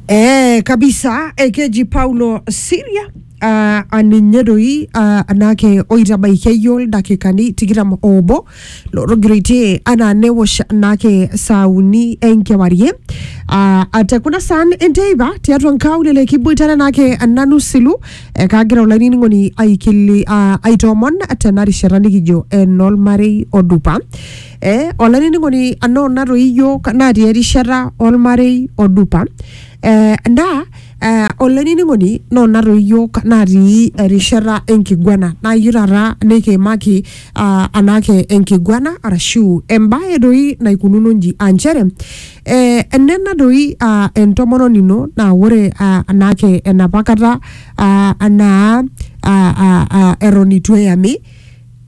Eh, kabisa ekeji paulo siria uh, aninye doi uh, anake oitabaiki eyiol ildakikani tikitam obo lotogiroitie anaa newosh anake saa uni enkewarie uh, ate kuna saan enteipa tiatua nkaulele kiboitare anake nanu silu eh, kagira olainining'oni aikili uh, aitoomon tena rishata nikijo enolmarei odupa Eh, olainining'oni anoo natoi iyiok natii erishata olmarei odupa eh, naa eh, olainining'oni noo natoi iyiok natii erishata enkiguana naa iyieu taata nikiimaki ah, anaake enkiguana arashu embaye doi naikununo inji aa nchere eh, enena doi ah, entomononi ino naa ore ah, anaake enapa kata ah, anaa ah, ah, ah, eton itu eyami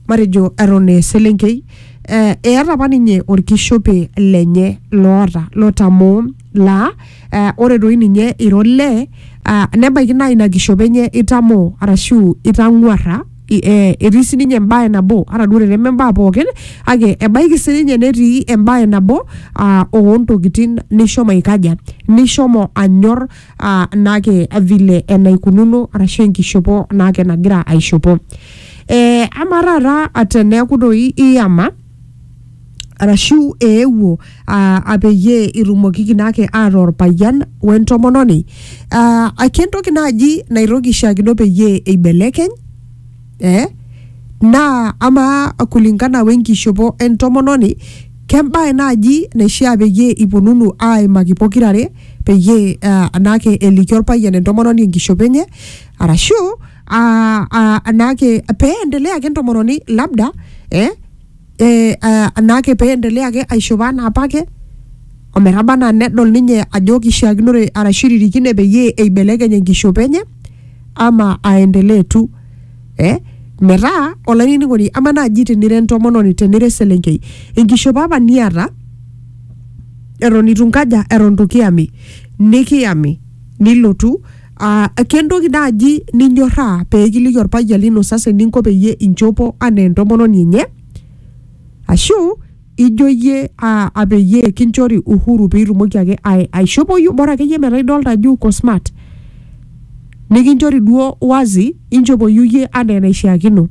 matejo eton eselenkei eh, eata apa ninye orkishope lenye loota lotamoo laa eh, ore doi ninye iro lee ah, nebaiki naa ina kishope enye itamoo arashu itang'uarra i- eh, etii sininye embae nabo ata duo teneme mbaa pookin kake ebaiki sininye netii embae nabo ah, oontokitin nishomo aikaja nishomo anyor uh, naake vile enaikununo arashu enkishopo naake nagira aishopo eh, ama taata teneeku doi iyama arashu eewuo uh, apeyie itumokiki naake aata orpayian wentomononi uh, ake entoki naaji naitoki shaakino peyie eibelekeny eh? naa ama kulingana wenkishopo entomononi kembae naaji naishia peyie iponunu aimaki pokirare peyie ah, anaake elikio orpayian entomononi enkishopo enye arashu ah, ah, anaake pee endelea ake entomononi labda eh, eh, ah, anaake pee endelea ake aishopo anaa apake ometaba anaa nedol ninye ajo kishiakinore arashu iririkine peyie eibelekeny enkishopo enye ama aendelee tu eh? metaa olainining'oni ama naaji tenira entomononi tenira eselenkei enkishopo apa niata eton itu nkaja eton itu kiyami nikiyami nilotu aa kentoki naaji ninyorraa pee kiliki orpayian lino sasa eninko peyie inchopo anaa entomononi enye ashu ijo iyie aa a peyie kinchori uhuru piitumoki ake ai- aishopoyu bora akeyie metaa idolta ajo uko smart nikinchori duo wazi inchopoyu iyie anaa enaishiakino.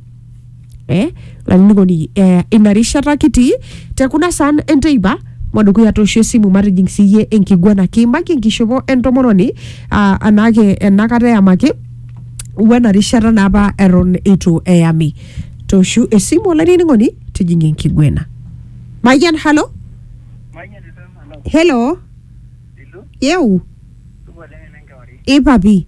eh, olainining'oni eh, ina rishata kitii te kuna saan enteipa madukuya toosho esimu matijing siiyie enkiguana kiimaki enkishopo entomononi ah, anaake enakata eyamaki wena rishata naa apa eton eitu eyami tooshu esimu olainining'oni tijing enkiguena mayian halo helo yeu ipapi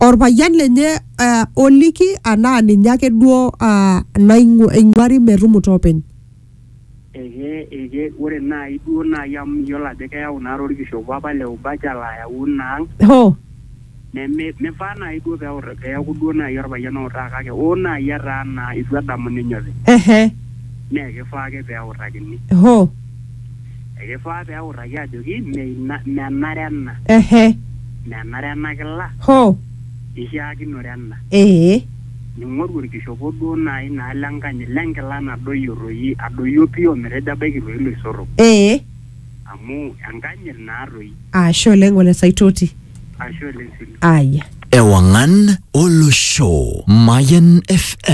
olpayian lenye uh, oliki anaa ninye ake duo uh, naing'u- eing'uari metumuta openy Eke, eke, ore naaji duo naaji amu miyiolo ajo keyau naa torkishopo apa le ubacha layau ina ang hoo neme mifaa naaji duo peut peeku duo naaji orpayian outaa kake oo naaji etaa naa itu edamu ninye openy ehe naa ekifaa ake peutakini hoo Ekifaa pee eutaki ajoki mme ina, menare ena. Ehe. Menare ena kila. Hoo. Eishaakinore ena. Ee. Ning'oru olkishopo duo naai naa le nkanyit le nkila nadoyio toi, adoyio pii o metejo abaiki toi iloisotok. Ee. Amu enkanyit naa toi. Ashe oleng Ole Saitoti. Ashe oleng sii. Aya. Ewang'an olosho, Mayian FM.